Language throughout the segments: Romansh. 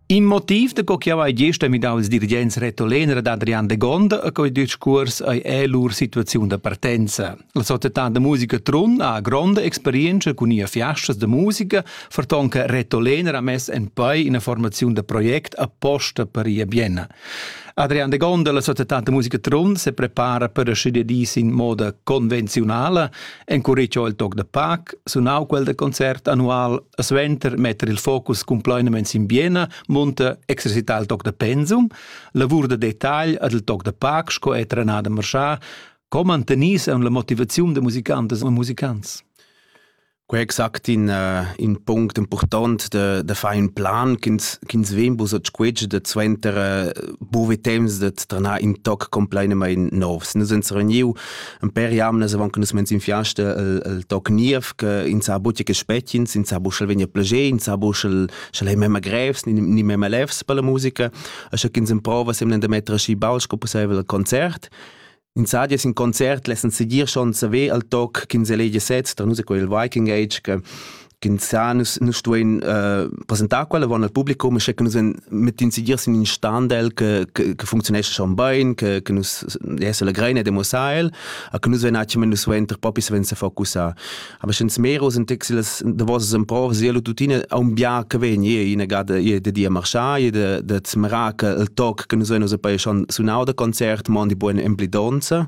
In motiv da co chiau ei gesta midau ils dirigents retolener ad Adrian Degonda e quei discuors ei è lur situaziun da partenza. La società da musica Trun ha gronda experienza cun ia fiastas da musica, ferton che retolener ha mess en pei ina formaziun da project apposta per ia Bienna. Adrian de Gonda, la società de musica Trun, se prepara per ascidere dis in moda convenzionale Encuricho il toc da pac, sunau quel da concert annual, a suenter metter il focus cumplainament sin Biena, munta exercitar il toc da pensum, lavur da detagl ad il toc da pac sco è trenada marschà, co mantenis en la motivaziun da musicantes e musicants. Quei exact in, uh, in punct important de, de fare un plan ch'ins ch'ins vegn bus a squetsch de suenter uh, buve temps de tranar in toc completamente novs. Nus uns reuniu Ein per jamnas avon che nus mens in fiasta el, el toc niev che in sa buca che spetgins, in sa buschel vegn a plager, in sa buschel schel ei memma grevs, ni, ni memma lefs per la musica. E sche ch'ins emprova semmen da metter aschi baul sco pusseivel al concert. In sa dies in concert lessen seguir schon saver al toc ch'ins elegia sez, tra nus è quel Viking Age che Ginzà nus, nus stuein uh, presentar quella von al publicum, sche che nus mit incidir sin in standel che, che, che funzionesce schon bein, che, che nus se legrein e demossar el, a che nus ven attimen nus ven ter popi se ven se focussar. Aber schon smero sind texiles de vosas empor sielo tutine a un bia che ven je in gada je de dia marchar, je de de zmra che el toc che nus ven us poi schon sunau de concert, mon di buon emblidonza,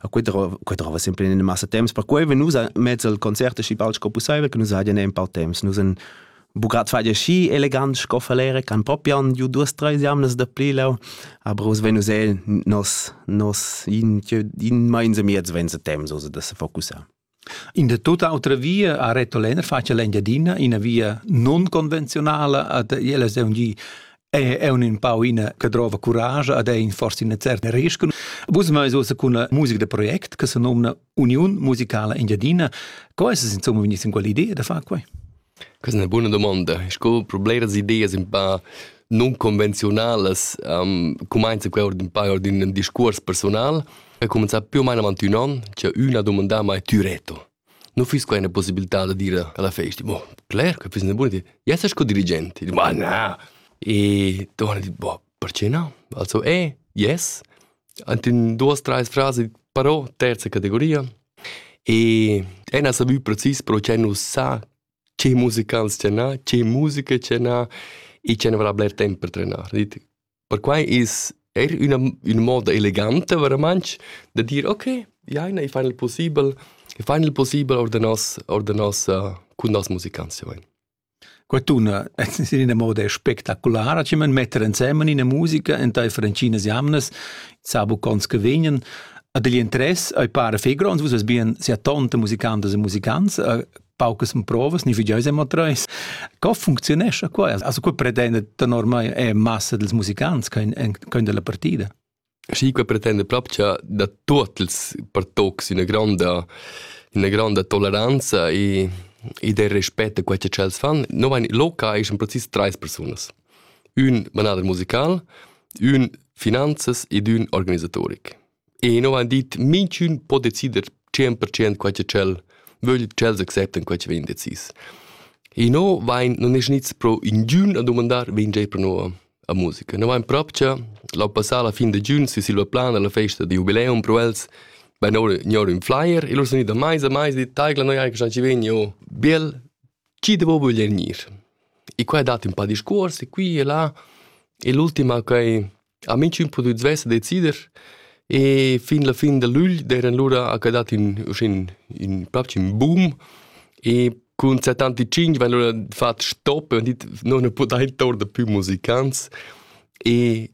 A quei drova, quei drova sempre in massa temps, perquei ve nus mezzo al concert schi bald sco pusseivel, che nus haien ein paar temps. Nus en bucat fai schi elegant sco falere, can propian ju duas treis jamnas da pli lau, aber us venus el nos nos in in meinse miez vense temps, so da se focussar. In da tut autra via ha Reto Lenner fatg l'Engiadina, ina via nunconvenziunala ad ella seun gi è è un in pau ina che drova curage ad è in forse ina certa rischun. Vus mai ussa con una musica da project che se nomna Union Musicala Engiadina. Co è es insomma vegniss in quell'idea da far quai? Questa è ina buna domanda. Sco per bleras ideas un pa nunconvenziunalas um, cumainza quel ord un pa ord ün discuors personal e cumenzà più o meno avant ün on c'è üna domanda ma tü reto. Non füss quai üna possibilità da dire alla festa, boh, cler che füss üna buona idea. Jess sco dirigent. E dic, ma na. E torna e dic, boh, Perche no? Also e, yes, ant ün duos, trais frasi però terza categoria. E ün ha savü precis pro che nu sa che musicals tgernà, che musica tgernà e che ne varà bler temp per trenar. Dit, perquai es eir üna üna moda eleganta veramantsch da dir okay, jaina, i fain il pussibel, i fain il pussibel our da nos our da nossa cun noss musicants, ja vain. Quattuna es in ina moda spectaculara chi man metter insemmen ina musica entaifer ntginas jamnas, sa bucons che vegnan. Ad igl interess ei para fei gronds, vus vess bien sia tonta musicantas e musicants, paucas provas, ni figieu sem treis. Co funcziunescha quai? Also, quei pretenda da normai è massa dels musicants che ein dalla partida. Schi qua pretenda propcha da tuot ils pertocs üna gronda üna gronda toleranza e ed el respetta quai cha tschels fan. No vain loca eschan precis trais persunas. Ün manader musical, ün finanzas ed ün organisatoric. E no vain dit minchün po decider tschient per tschient quai cha tschel vögl, tschels acceptan quai cha vegn decis. E no vain, nun es gnits pro ingün a dumandar, vegn già pro no a musica. No vain propcha, l'ho passà la fin da giun sü silla plana la festa da jubileum pro els, vain our gnor ün flyer e lur sun gnit a maisa, maisa, dit, taigla, noi eir stanci vegni, oh, biel, chi devo voler gnir? E qua he dat ün pa discuors, e qui e là, e l'ultima ch'ai ha minchün pudü svess decider, e fin la fin da lügl d'eran lura ha que dat ün uschè ün, ün propcha ün boom e Cun 75 vegn lura fatg stop e non ne pudain tornar più musicants e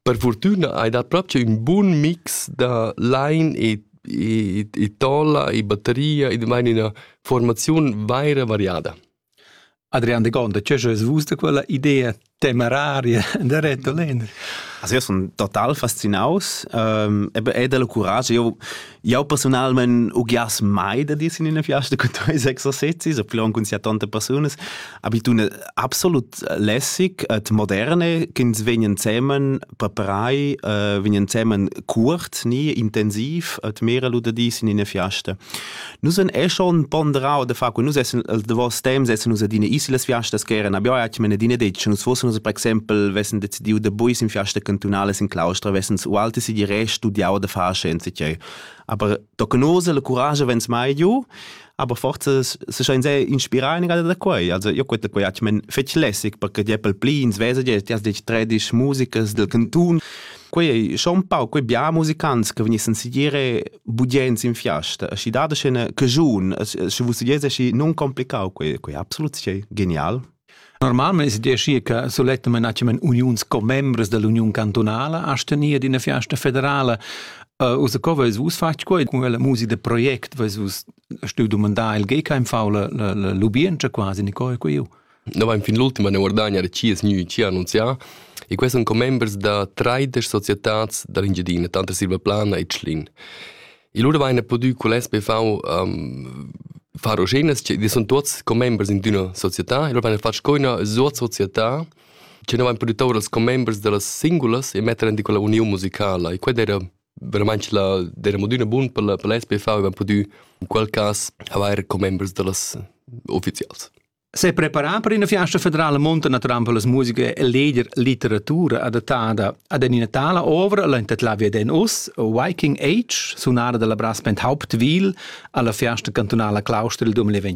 per fortuna hai dat proprio un buon mix da line e e, e tolla e batteria e vain üna formaziun vaira variada. Adrian de Gonda, che es vus da quella idea temeraria da retolin also io sun total fascinaus ähm, eben è della courage io io personalment ugias mai da dir in una fiasta con tuoi exercizi so plon con sia tante personas abitune absolut lässig et moderne ch'ins vegnan zemen preparai äh, vegnan zemen curt nie intensiv et mera lu da dis in una fiasta Nus en è schon ponderau de fa cu nus essen els de vos temps essen nus adina isolas fiastas che eran abia atg mena dina detg nus fossen nus per exempel vessen decidiu de buis in fiasta cantunales in claustra vessen u alte si di re studiau de far scienze che aber tocanose le courage vens mai giu aber forza se schein sei inspirar in da quei also io quet quei atg men fetg lässig perché die pel plin svesa die das dich tradisch musicas del cantun Quei ei schon un pau quei bia musicants che vegnissen sigire budiens in fiasta, aschi da da scena che giun, sche vus sigires aschi non complicau quei, quei absolut schi genial. Normalmein si dici che soletta menacem uniuns commembres dell'Union cantonala a stenir d'ina fiasta federala. Uh, usa co veis vus fatg quei con quella musica de project veis vus stu domandar il gei kein faule lubien quasi ni coi quei Noi vain fin l'ultima ne guardagna chi es gnü chi ha annunzià e quai sun commembers da traidesch societats da l'Engiadina, tanter Silvaplana e Tschlin. E lura vaina pudü cul SPV um, far oschenas, che sun tuots commembers in d'üna società e lura vaina fatg co üna sozietà che noi vain pudü tour als commembers da las singulas e metter in quella uniun musicala e quella era veramente la era mod üna bun per la per la SPV e vain pudü in quel cas avair commembers da las ufficials. S'è preparà per ina fiasta federala monta naturalmente per la musica e leger litteratura adattada ad ina tala ovra la intitlavia den us Viking Age sunara dalla brass band Hauptwil alla fiasta cantunala Claustra il 2020.